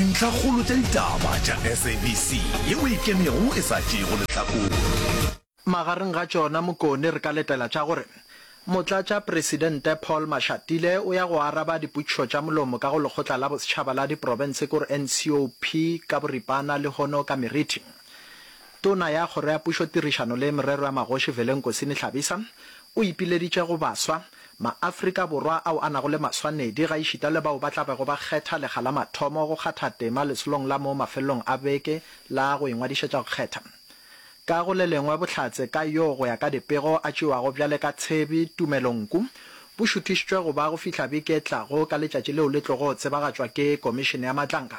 Dintlhakgolo tša ditaba tša SABC ye o e kemego e sa tšeego lehlakore. Magareng ga tšona Mokone re ka letela tša gore Motlatšapresidente Paul Mashatile o ya go araba dipotšišo tša molomo ka go Lekgotla la Bosetšhaba la Diprofense ke gore NCOP ka boripana lehono ka meriti. Tona ya Kgoro ya Pušo Tirišano le Merero ya Magoši Velenkosini Hlabisa o ipileditše go baswa, Maafrika Borwa ao a nago le maswanedi gaešita le bao ba tla bego ba kgetha lekga la mathomo go kgatha tema lesolong la mo mafelelong a beke la go ingwadišetša go kgetha. Ka go le lengwe, bohlatse ka yo go ya ka dipego a tšewago bjale ka tshebi tumelo nku bo šuthišitšwe go ba go fihla beke e tlago ka letšatši leo le tlogo tsebagatšwa ke Komišene ya Matlanka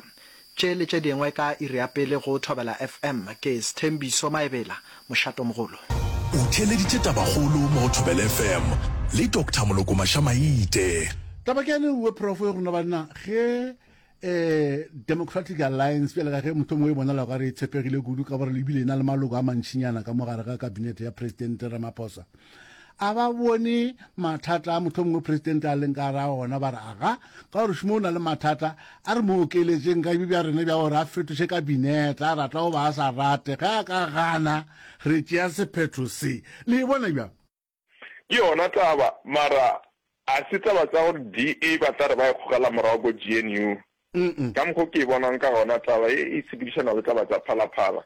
Tše le tše dingwe ka iri ya pele go Thobela FM. Ke Sthembiso Maebela, mošatomogolo. O theeleditše tabakgolo mo go Thobela FM le Doctor Moloko Maša-Maite. Taba ke ya leuwe prof gore na banna ge um Democratic Alliance bjale ka ge mohlomongwe e bonala o ka re e tshepegile kudu ka gore le ebile e na le maloko a mantšinyana ka mo gare ga kabinete ya Presidente Ramaphosa a ba bone mathata a motlho mongwe presidente a leng ka ra ona ba re aga ka gore šumo o na le mathata a re mo okeletseng ka bja rena bja gore a fetoše kabineta a rata o ba a sa rate ge a ka gana re tšea sephetho se le e bona bjang ke yona taba mara a se taba tsa gore da ba tla re ba e kgogela morago ko gnu Ka mokgwa o ke e bonang ka gona, taba ye e sepedišana le taba tša phalaphala,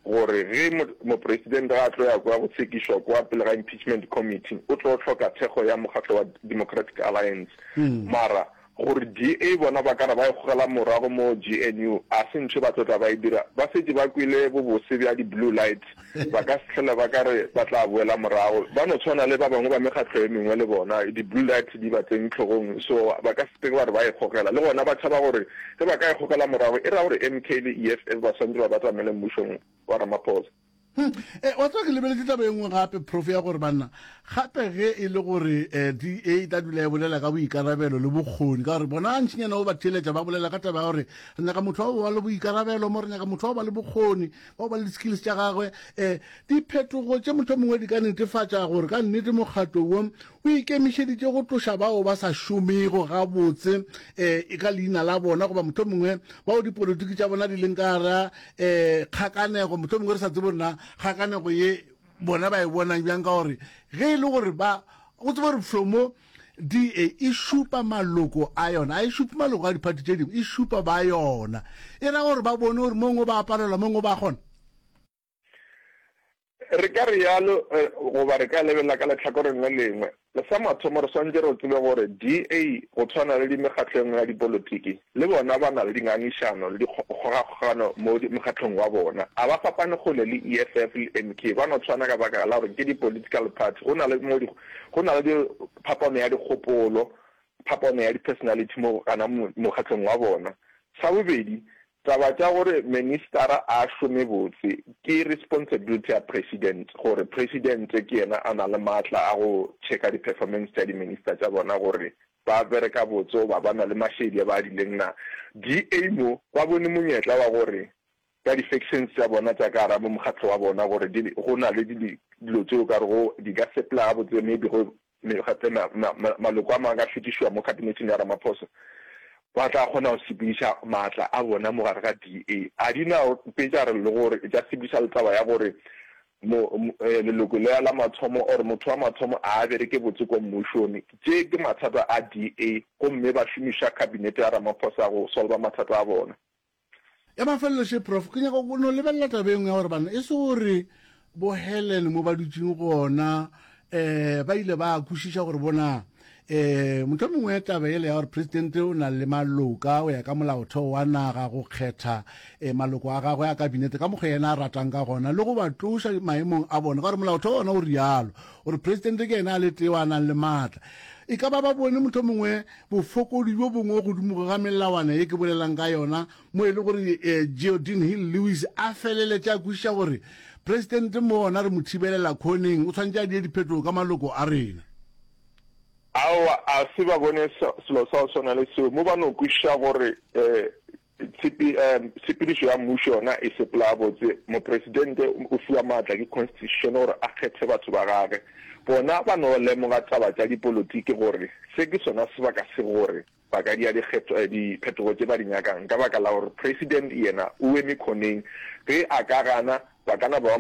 gore ge Mopresidente ge a tlo ya kwa go tshekishwa kwa pele ga Impeachment Committee, o tlo hloka thekgo ya mokgatlo wa Democratic Alliance. Mara gore DA bona ba ka re ba e gogela morago mo GNU, ga se ntho ye ba tlo tla ba e dira. Ba šetše ba kwele bobose bja di-blue lights. Ba ka se hlole ba ka re ba tla boela morago. Ba no tshwana le ba bangwe ba mekgatlo e mengwe le bona, di-bullet di ba tseng hlogong, so ba ka se ke ba re ba e gogela. Le gona ba tšhaba gore ge ba ka e gogela morago, e ra gore MK le EFF ba swanetše ba batamele mmušong wa Ramaphosa. Hum, e, wa tseba ke lebeletše taba e nngwe gape, Prof, ya gore banna gape ge e le gore eh, DA e tla dula e bolela ka boikarabelo le bokgoni, ka gore bona ntšinyana o ba theeletša ba bolela ka taba ya gore re nyaka motho wa go ba le boikarabelo mo, re nyaka motho wa go ba le bokgoni, wa ba le di-skills tša gagwe um eh, diphetogo tše motho mongwe di ka netefatša gore ka nnete mokgatlo wo o ikemišeditše go tloša bao ba sa šomego gabotse um eh, e ka leina la bona goba motho mongwe bao dipolotiki tša bona di leng ka gara um eh, kgakanego motho mongwe re sa tsebo nna kgakanego ye bona ba e bonang bjang ka gore ge e le gore ba go tsebo re flomo DA e šupa maloko a yona, a e šupe maloko a diphathi tše dingwe, e šupa ba yona. E ra gore ba bone gore mongwe ba palelwa, mongwe ba kgona. Re ka re yalo, eh, goba re ka lebelela ka lehlakoreng le lengwe. Sa mathomo re swantše re tsebe gore DA go tshwana le di mekgatlo engwe ya dipolotiki, le bona ba na le dingangišano le dikgogakgogano mo mokgatlong wa bona. A ba fapane kgole le EFF le MK, ba no tshwana ka baka la gore ke di political party, go na le mo di Go na le phapano ya dikgopolo, phapano ya di-personality mo gana mokgatlong wa bona. Sa bobedi, taba tša gore ministara a šome botse ke responsibility ya president, gore president ke yena a na le maatla a go checka di-performance tša di-minister tša bona gore ba bereka botse goba ba na le mašedi a ba adileng na. DA mo ba bone monyetla wa gore ka di-sections tša bona tša ka gara mo mokgatlo wa bona gore di, go na le di, dilo tše o ka rego di ka sepela gabotse, maybe go me, gape ma, ma, ma, maloko a mangwe ka fetišwa mo khabineteng ya Ramaphosa, ba tla kgona go sepediša maatla a bona mo gare ga DA. A di na mpe tša re le gore e tša sepediša le taba ya gore mo, mo, eh, leloko le la mathomo or motho wa mathomo a a bereke botse kwa mmušong. Tše ke mathata a DA gomme ba šomiša khabinete ya Ramaphosa go solva mathata a bona. Ya mafelelo še prof, ke nyaka go no lebelela taba e nngwe ya gore bana e se gore bo Helen mo ba dutšeng gona um ba ile ba kwešiša gore bona um motho mongwe taba ele ya gore presidente o na le maloka o ya ka molaotheo wa naga go kgetha um maloko a gagwe a kabinete ka mokgwa yena a ratang ka gona le go ba tloša maemong a bona ka gore molaotheo ona o rialo gore presidente ke yena a le tee wa nang le maatla e ka ba ba bone motho mongwe bofokodi bjo bongwe godimo ga melawana ye ke bolelang ka yona, mo e le gore Geodin Hill Lewis a feleletša a kwešiša gore Presidente mo ona re mo thibelela khoneng, o tshwanetše a die diphetogo ka maloko a rena. Aowa, a se ba bone selo sa go swana le seo, mo ba no kwešiša gore Tshepedišo ya mmušo yona e sepela gabotse. Mopresidente o fiwa maatla ke Constitution gore a kgethe batho ba gagwe. Bona ba no lemoga taba tša dipolotiki gore se ke sona sebaka se gore ba ka dia diphetogo tše ba di nyakang ka baka la gore President yena o eme khoneng. Ge a ka gana, ba ka na ba